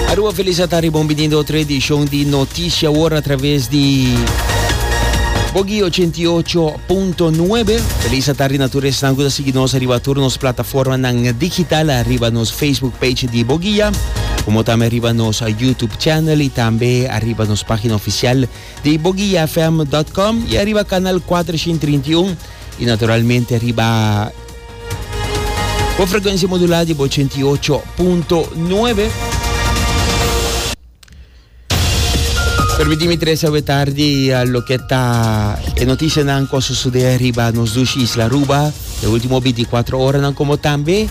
Aruba feliz a tarde, bon binindo otro edición di Noticia Hora a través di Bogi 88.9. Feliz a tarde na tu restan que sigue nos arriba todos nos plataforma nan digital, arriba nos Facebook page di Bogia, como también arriba nos YouTube channel y también arriba nos página oficial di bogiafm.com y arriba canal 431 y naturalmente arriba Bo frekuensia modulá di bo ochenta i ocho punto nuebe. Permití mi tres awe tardi loke ta e notisianan ku a sosodé riba nos dushi isla Aruba e último binti i kuatro oranan komo tambe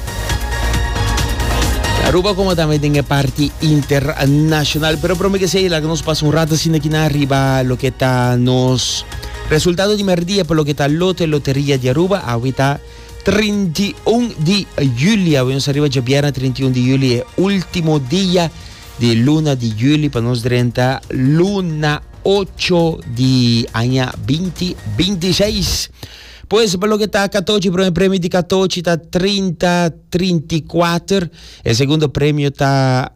Aruba komo tambe den e parti internashonal. Pero promé ke se laga nos pasa un rato asinda kinan riba loke ta nos Resultado di merdia pa loke ta lote loteria di Aruba. Awe ta trinta i un di juli. Awe nos a riba dje bièrnè trinta i un di juli. E ultimo dia di luna di juli pa nos drenta luna ocho di aña binti binti i seis. Pues pa loke ta katochi, prome premio di katochi ta trinta, trinta i kuater. E segundo premio ta.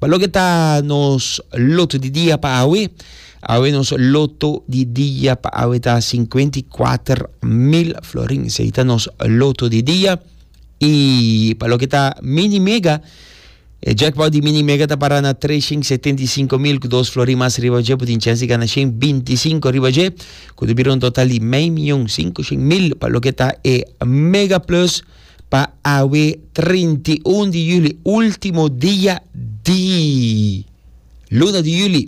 Ba loke ta nos loto di dia pa awe? Awe nos loto di dia pa awe ta 54 mil florin. Sei ta nos loto di dia. I pa loke ta mini mega, e jackpot di mini mega ta para na 375 mil ku dos florin mas riba je. Putin chansi gana 125 riba je, ku ta bira un total di mei mion 500 mil. Pa loke ta e mega plus. pa awe trinta i un di yuli, último dia di luna di yuli.